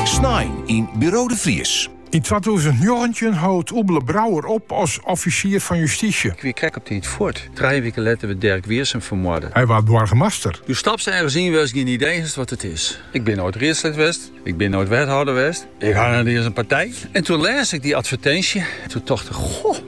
Snein yn Buro de Vries. Yn twatûzen njoggentjin hold Oebele Brouwer op as offisier fan justysje. Ik wie krekt op tiid fuort. Trije wiken letter wurdt Derk Wiersum fermoarde. Hy waard boargemaster. Do stapst ergens yn wêr'st gjin idee hast wat it is. Ik bin noait riedslid west. Ik bin noait wethâlder west. Ik ha net iens in partij. En toe lês ik dy advertinsje. Toe tocht ik, goh!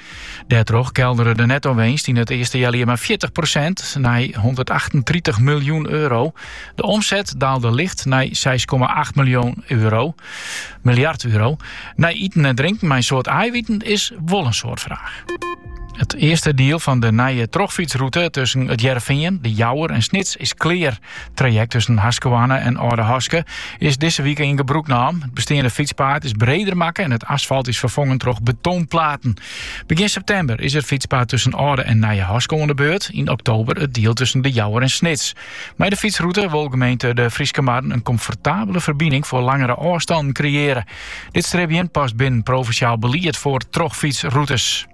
Dêrtroch keldere de netto-winst yn it earste healjier mei fjirtich prosint nei hûndertachtentritich miljoen euro. De omset daalde licht nei seis komma acht miljoen euro. Miljard euro. Nei iten en drinken mei in soad aaiviten is wol in soad fraach. It earste diel fan de nije trochfytsrûte tusken It Hearrenfean, De Jouwer en Snits is klear. Trajekt tusken Haskerhoarne en Aldehaske is dizze wike yn gebrûk naam. It besteande fytspaad is breder makke en it asfalt is ferfongen troch betonplaten. Begjin septimber is it fytspaad tusken Alde en Nije Haske oan de beurt, yn oktober it diel tusken De Jouwer en Snits. Mei de fytsrûte wol gemeente De Fryske Marren in komfortabele ferbining foar langere ôfstannen kreëarje. Dit stribjen past binnen provinsjaal belied foar trochfytsrûtes.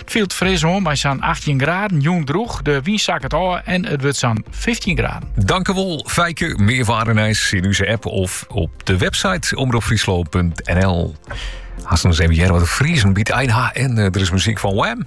It fielt fris oan mei sa'n achttjin graden. Jûn drûch, de wyn sakket ôf en it wurdt sa'n fyftjin graden. Dankjewol Feike, mear waarnijs yn onze app of op de website omropfryslan.nl. Aansens even hearre wat de Friezen by de ein ha en eh, der is muzyk fan Wham!